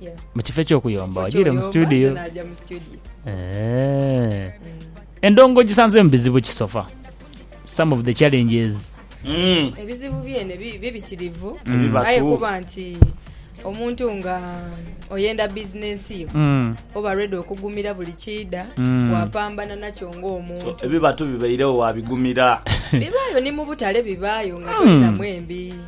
Yeah. mu kifo eky'okuyomba Ekifo wagiire mu ky'oyomba, situdiyo nze naja mu studio. Eh. endongo ogisanzeemu bizibu ki sofa some of the challenges Mm. ebizibu byene bi- bibitirivu Ebibatu. aye kuba nti omuntu nga oyenda bizinensi yo Mm. oba redi okugumira buli kiida Mm. wapambana nakyo So, ng'omuntu ebibatu bibairewo wabigumira bibaayo ni mu butale bibaayo nga tolinamu embi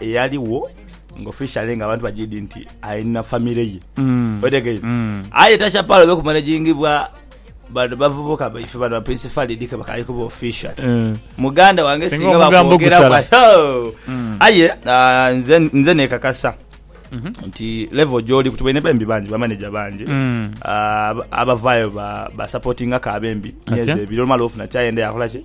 eyaliwo nga officially nga abantu bajidi nti alina family ye mm. otegeire mm. aye tachapalo bekumanagingibwa bano bavubuka baife bano baprince falidi kebakali kuba official mm. muganda wange singa bakwogera mm. aye uh, nze, nze nekakasa Mm -hmm. nti level gyoli kuti balina bembi bangi bamaneja bangi mm. uh, abavayo basupportinga ba ka bembi okay. nyezi ebiri olumala ofuna kyayenda yakolaki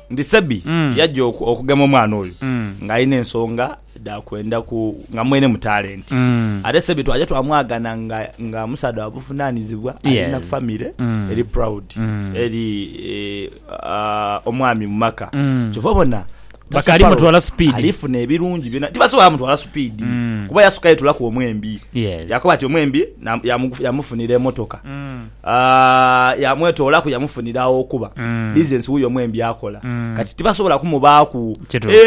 Ndi Sebi yaja okugema omwana oyo nga alina ensonga dha kwenda ku nga mwene mu talenti. Ate Sebi twaja twamwagana nga nga musaadha wa buvunanizibwa alina Yes. famire Mm. eri proud eri eh, ah, omwami mu maka kyova obona Bakaali Tasaparo mutwala speed. alifuna ebirungi byona tibasobola mutwala supiidi kuba yasukayo etulaku omwembi Yes. yakoba ati omwembi na- yamugu- yamufunira emotoka Yamwetoolaku, yamufunira agh'okuba. Bizinensi wuyo mwene by'akola. Kati tibasobola kumubaaku. Kituufu.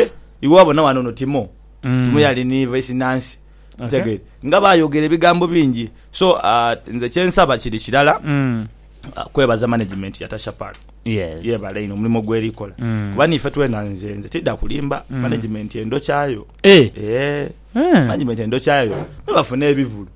Iwe wabona wano no Timo. Timo yali ni Vaisi Nansi. Otegeera? Nga baayogera ebigambo bingi. So, nze kye nsaba kiri kirala, kwebaza manegimenti ya Tasha Park. Yeebale inho omulimo gw'eri kola. Kuba niife twena, nze, nze tidha kulimba, manegimenti endhokyayo. Eeh. Eeh. Manegimenti endhokyayo. Me bafune ebivulu.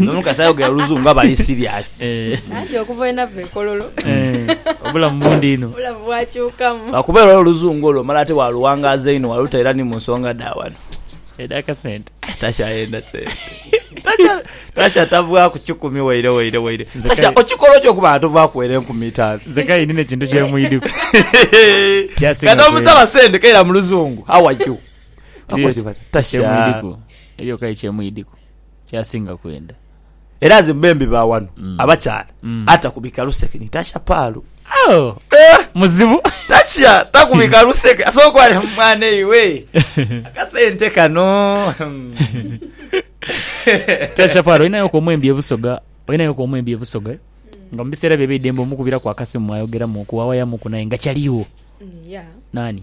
N'omukazi ayogera oluzungu aba ali siriyasi. Anti okuva bwe nava e Kololo obulamu bundi inho. Obulamu bwakyukamu. Lwakuba era oluzungu olwo omala ate waaluwangaaza inho waalutaira ni mu nsonga dha wano. Edh'akasente. Takyayenda sente. Tasha tavaaku kikumi waire waire waire. Tasha okikola otya okuba nga tovaaku waire nkumi itaanu? Nze k'aye ndina ekintu kye mwidhiku. Nga n'omusaba sente k'aira mu luzungu, How are you? Akubwira ati, Tasha. Ekyemwidhiku, eriyo k'aye kye mwidhiku. kyasinga kwenda. Era nze mubembi ba wano abakyala atakubika luseke ni Tasha Palu. Oh! Muzibu. Tasha takubika luseke asobola okuba ati mwana iwe akasente kano. Tasha Palu olinayo ku omwembi e Busoga olinayo ku omwembi e Busoga nga mu biseera byo eby'eidembe omukubiraku akasimu mwayogeramuku wawayamuku naye nga caliwo. Nani?